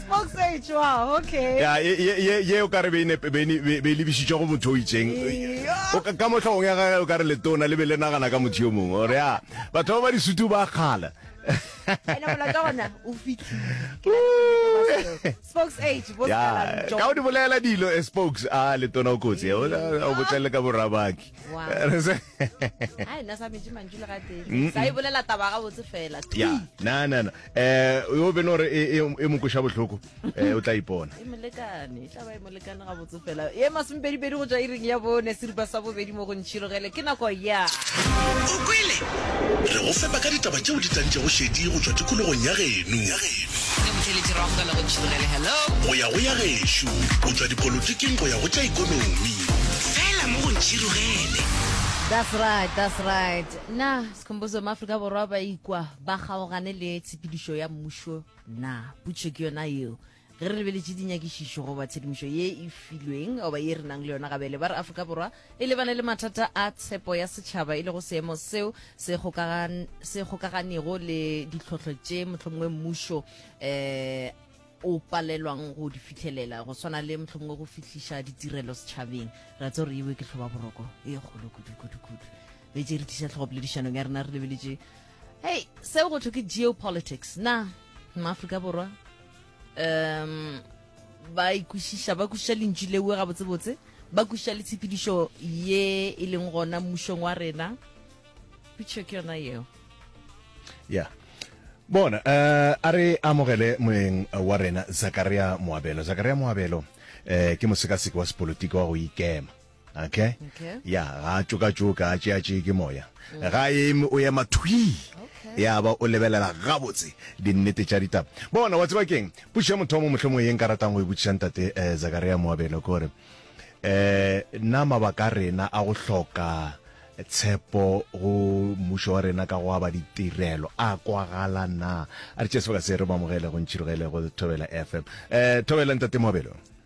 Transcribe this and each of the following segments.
Smokes e tšwa, okay. ya ye- ye- ye- ye o ka re be e ne- be ne- be- be e lebišitšwe go motho o itseng O ka- ka mohlogong ya gage o ka re letona le be le nagana ka motho yo mongwe ore ya batho ba ba disutu ba kgala Ene molato wa gona, o fihlile. Ke na le bonnete ba seo. Smokes e tšwa, bo ya Scalan John. ka o di bolela dilo eh, spokes a letona o kotsi eh, o- o botlelele ka borabaki Wow. Re se- yo bene gore e, e, e mokoša botlhoko um eh, o tla ipona e masomepedipedi go tswa iring ya bone seripa sa bobedi mo go ntšhirogele ke nako ya o kwele re go fepa ka ditaba tšeo di tlantšego šedi go tswa tikologong ya geno le motheletši rago ka nako tšhirogele hello go ya go ya gešo o tšwa dipolotiking go ya go tša ikonomi fela mo go ntšhirogele That's right, that's right. Na Sikhumbuzo maAfrika Borwa ba ikwa ba kgaogane le tshepedišo ya mmušo na? Putšo ke yona yeo. Ge re lebeletše dinyakišišo goba tshedimošo ye e filweng goba ye re nang le yona gabele ba re Afrika Borwa E lebane le mathata a tshepo ya setšhaba e lego seemo seo se kgokagan, se kgokaganego le ditlhohlo tše mohlomongwe mmušo eh, o palelwang go di fitlhelela go swana le mohlomongwe go fihliša ditirelo setšhabeng ra tse gore ewe ke tlhoba boroko e kgolo kudu kudu kudu be tše re tliša tlhogopoledišanong ya rena re lebeletše hei seo go thwe ke geopolitics na maaforika borwa um ba ikwešiša ba kwešiša lentši lewe gabotsebotse ba kwešiša le tshepedišo ye e leng gona mmušong wa rena pitšho ke yona yeo ya bona um a re amogele moeng wa rena zakaria moabelo zakaria moabelo um ke mosekaseki wa sepolotiki wa go ikema Okay. Okay. ya ga a tšokatšoka a tšeatšee ke moya ga eme o ema thwi ya ba o lebelela gabotse dinnete tša ditaba bona wa tseba keng puši ya mothomo mohlomong ye nka ratang go e botšiša ntate um zakaria moabelo ke gore um na mabaka a rena a go hloka tshepo go mmušo wa rena ka go aba ditirelo a kwagala na a re tšea sebaka se re mo amogele go ntšhirogele go thobela fm um thobela ntate moabelo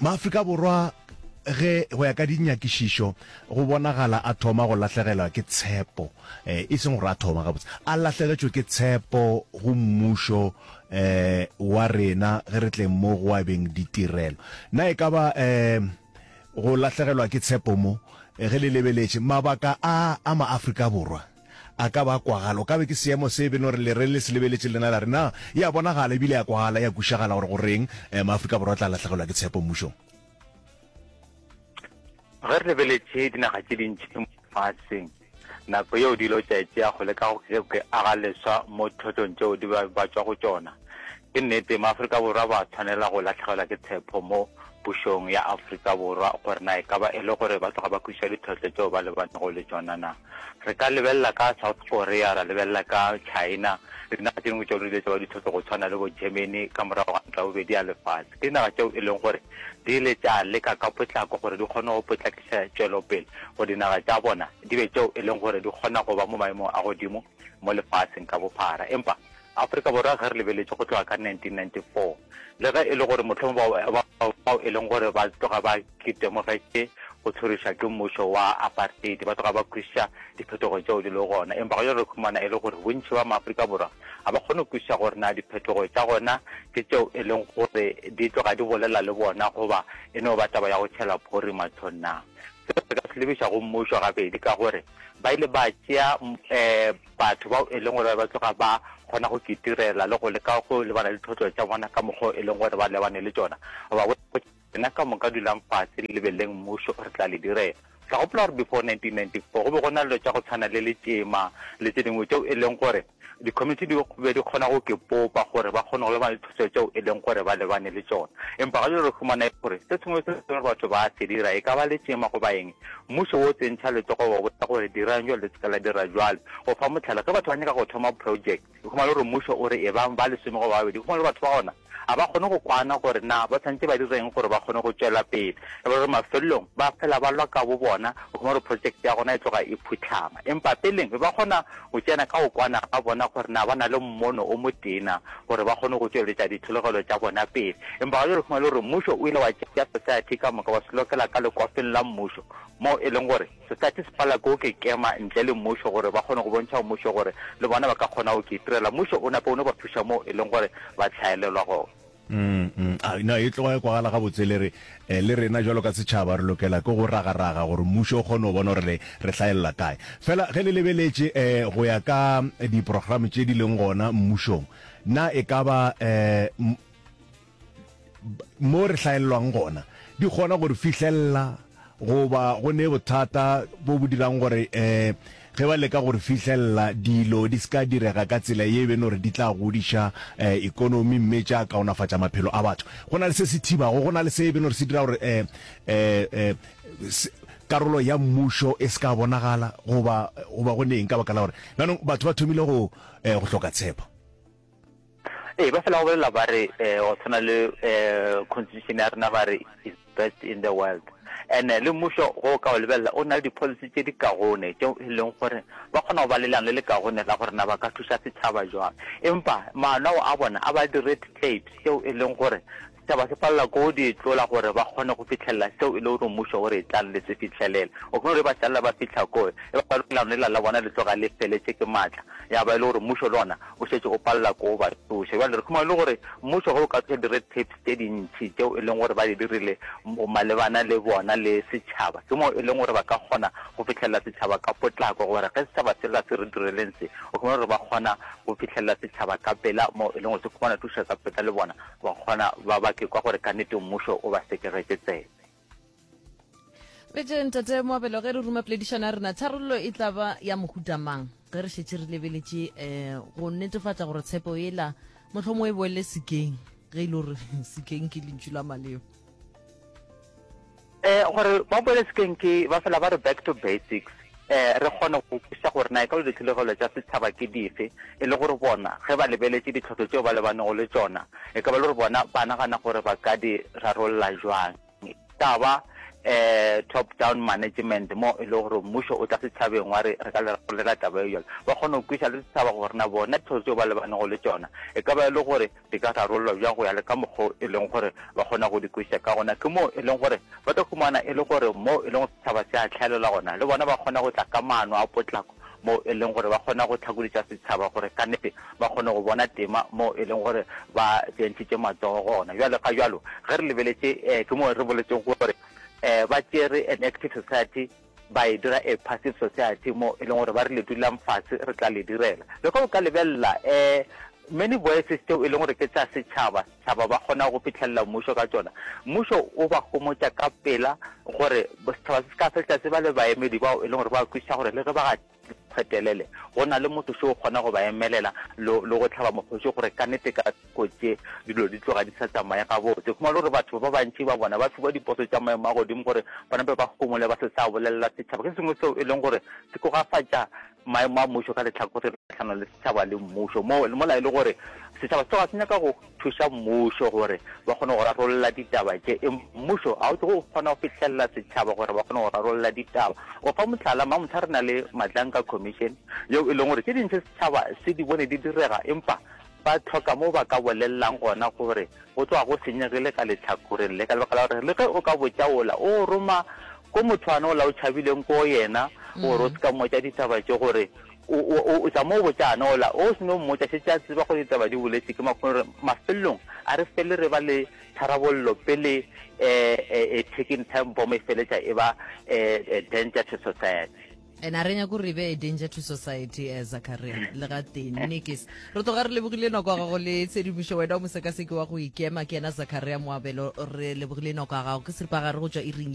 Maafrika Borwa ge go ya ka dinyakišišo go bonagala a thoma go lahlegelwa ke tshepo eh, e seng gore a thoma gabotse a lahlegetšwe ke tshepo go mmušo eh, wa rena ge re tleng mo go abeng ditirelo na e ka ba eh, go lahlegelwa ke tshepo mo eh, ge le lebeletše mabaka a a maafrika borwa A ka ba a kwagala. O ka be ke seemo se e beno re le re le se lebeletše lena la re, Na e a bonagala e bile e a kwagala, e a kwišagala gore go reng eh, Maafrika Borwa a tla lahlegelwa ke tshepo mmušong? Ge re lebeletše dinaga tše dintši mo lefaseng, nako yeo dilo tša e tšea go leka go ke ke aga leswa mo ditlhotlong tšeo di ba batšwa go tšona. Ke nnete, Maafrika Borwa ba a tshwanela go lahlegelwa ke tshepo mo pušong ya Afrika Borwa gore na e ka ba e le gore ba tloga ba kwešiša ditlhohlo tšeo ba lebanego le tšona na. Re ka lebelela ka South Korea, ra lebelela ka China le dinaga tše dingwe tšeo re di letša ba ditlhohlo go tshwana le bo Germany ka morago ga Ntwa ya Bobedi ya Lefase. Ke dinaga tšeo e leng gore di ile tša leka ka potlako gore di kgone go potlakiša tšwelopele gore dinaga tša bona di be tšeo e leng gore di kgona go ba mo maemong a godimo mo lefaseng ka bophara. Empa Afrika Borwa ge re lebeletše go tloga ka 1994, le ge e le gore mohlomong bao bao e leng gore ba tloga ba itemogetše go tshoriša ke mmušo wa apartheid ba tloga ba kwešiša diphetogo tšeo di le gona, empa go re khumana e le gore bontši ba maAfrika Borwa ga ba kgone go kwešiša gore na diphetogo tša gona ke tšeo e leng gore di tloga di bolela le bona goba e no ba taba ya go tšhela phori mathong na. Seo se ka se lebiša go mmušo gabedi ka gore ba ile ba tšea um batho bao e leng gore ba tloga ba kgona go kitirela le go leka go lebana le ditlhotlo tša bona ka mokgwa e leng gore ba lebane le tšona ba rena ka moka dulang fatshe le lebeleleng mmušo re tla le direla ka gopola gore before 1994 go be go na le tša go tshwana le letšema le tse dingwe tšeo e leng gore Dikomiti di be di kgona go ke popa gore ba kgone go lebana le dithuso tšeo e leng gore ba lebane le tšona. Empa ga jalo re humana e le gore se sengwe le se sengwe batho ba se dira, e ka ba letšema goba eng, mmušo wo o tsentšha letsogo wa botša gore dirang jwalo le se ke la dira jwalo. Go fa mohlala, ge batho ba nyaka go thoma project, o humana le gore mmušo o re ebang ba lesome goba ba babedi, o humana le gore batho ba gona Ga ba kgone go kwana gore na ba tshwanetse ba direng gore ba kgone go tšwela pele. E ba gore mafelelong ba fela ba lwa ka bobona go thoma gore projeke ya gona e tloga e phutlhama. Empa peleng be ba kgona go tsena ka go kwana ga bona gore na ba na le mmono o motee na gore ba kgone go tšweletša ditlholegelo tša bona pele. Empa ga bjale fumana e le gore mmušo o ile wa tšea society ka moka wa se lokela ka lekwafeng la mmušo moo e leng gore Setaty se pala ko ke kema ntle le mmušo gore ba kgone go bontšha mmušo gore le bona ba ka kgonago ke itirela. Mmušo o nape o no ba thuša moo e leng gore ba hlaelelwa gona. Umm a no e tloga e kwagala gabotse le re le rena jwalo ka setšhaba re lokela ke go ragaraga gore mmušo o kgone go bona gore le re hlaelela kae. Fela ge le lebeletše go ya ka diprograme tše di leng gona mmušong na e ka ba mo re hlaelelwang gona di kgona gore fihlelela goba go ne bothata bo bo dirang gore um ge ba leka gore fihlelela dilo di seka direga ka tsela ye beno gore di tla godiša um ekonomi mme tša kaonafatša maphelo a batho go na le se se thibago go na le se beno gore se dira gore um um karolo ya mmušo e se ka bonagala goba goba go neng ka baka la gore jaanong batho ba thomile go um go hloka tshepo Ee, ba fela go bolela ba re eh, go tshwana le um constitution ya rena ba re is best in the world and eh, le mmušo go ka o lebelela o na le di-policy tse di kagone tse e leng gore ba kgona go ba lelano le le kagone la gore na ba ka thuša setšhaba jwang empa maano ao a bona a ba di-red tapes tseo e leng gore Taba se palela ko di tlola gore ba kgone go fihlelela seo e le gore mmušo o re tlang le se fihlelele. O kgone gore ba šalela ba fihla ko, e ba gore leano lela la bona le tloga le feletše ke matla, ya ba e le gore mmušo le ona o šetše o palela ko ba tsoša. Bjale re khumana e le gore mmušo ge o ka tsoša di-red tapes tše dintši tšeo e leng gore ba di dirile malebana le bona le setšhaba, ke moo e leng gore ba ka kgona go fihlelela setšhaba ka potlako gore ge setšhaba se lla se re direleng se, o khumana gore ba kgona go fihlelela setšhaba ka pela moo e leng gore se khumana thušo ka pela le bona. Ba kgona ba ba ke kwa gore ka nete mmušo o ba sekegetše tsebe. Re je ntate Moabelo ge re ruma poledišano ya rena, tharollo e tla ba ya mohuta mang ge re šetše re lebeletše um go netefatša gore tshepo ela mohlomongwe e boele sekeng ge e le gore sekeng ke lentšu la maleo. eh gore ba boele sekeng ke ba fela ba re back to basics eh re kgone go kwešiša gore na e ka lo ditlholegelo tša setšhaba ke dife e le gore bona ge ba lebeletše ditlhotlo tšeo ba lebanego le tšona e ka ba le gore bona ba nagana gore ba ka di rarolola jwang ka ba eh top down management mo e le gore mmušo o tla setšhabeng wa re re ka le rarollela taba e jalo ba kgone go kwešiša le setšhaba gore na bona ditlhotlo tšeo ba lebanego le tšona e ka ba e le gore di ka rarollwa bjang go ya le ka mokgwa o e leng gore ba kgona go di kwešiša ka gona. Ke moo e leng gore ba tlo humana e le gore moo e leng gore setšhaba se a hlaelela gona, le bona ba kgona go tla ka maano a potlako moo e leng gore ba kgona go tlhakoditša setšhaba gore ka nnete ba kgone go bona tema moo e leng gore ba beentšitše matsogo gona. Bjale ga bjalo ge re lebeletše um ke moo re boletseng gore um ba tšere an active society ba e dira a passive society mo e leng gore ba rile dulang fatshe re tla le direla le ka o ka lebelela um many voices teo e leng gore ke tsa setšhaba setšhaba ba kgona go fitlhelela mmušo ka tsona mmušo o ba gomotša ka pela gore setšhaba se se ka fetla se ba le baemedi bao e leng gore ba kwešiša gore le ge ba phetelele go na le motho se o kgona go ba emelela le go tlhaba mokgoši gore ka nete ka kotse dilo di tloga di sa tsamaye gabotse kuma le gore batho ba bantši ba bona ba fiwa diposo tša maemo a godimo gore bona be ba gomole ba se sa bolelela setšhaba ke sengwe seo e leng gore se kogafatša maemo a mmušo ka letlhakore kgatlhanong le setšhaba le mmušo mola e le gore setšhaba se tloga se nyaka go thuša mmušo gore ba kgone go rarolla ditaba tše. Empa mmušo ga o tsoge o kgona go fihlelela setšhaba gore ba kgone go rarolla ditaba. Go fa mohlala, mamohla re na le Madlanka Commission yeo e leng gore tše dintši setšhaba se di bone di direga empa ba hloka mo ba ka bolelelang gona gore go tloga go senyegile ka lehlakoreng le ka lebaka la gore le ge o ka botša ola o roma ko motho ane ola o tšhabileng ko yena gore o se ka mmotša ditaba tše gore O, o, o, o tla mo botša ana, ola, o se no mmotša, šetše a tseba gore ditaba di boletšwe ke makgone, gore mafelelong a re fele re ba le tharabollo pele e, e, e ticking time bomb e feletša e ba e, e danger to society. And a re nyake gore e be a danger to society, eh, Zakaria, le gatee. Nnikes. Re tloga re lebogile nako ya gago le tshedimošo. Wena o mosekaseki wa go ikema, ke yena Zakaria Moabelo. Re lebogile nako ya gago. Ke seripagare go tšwa iring ya.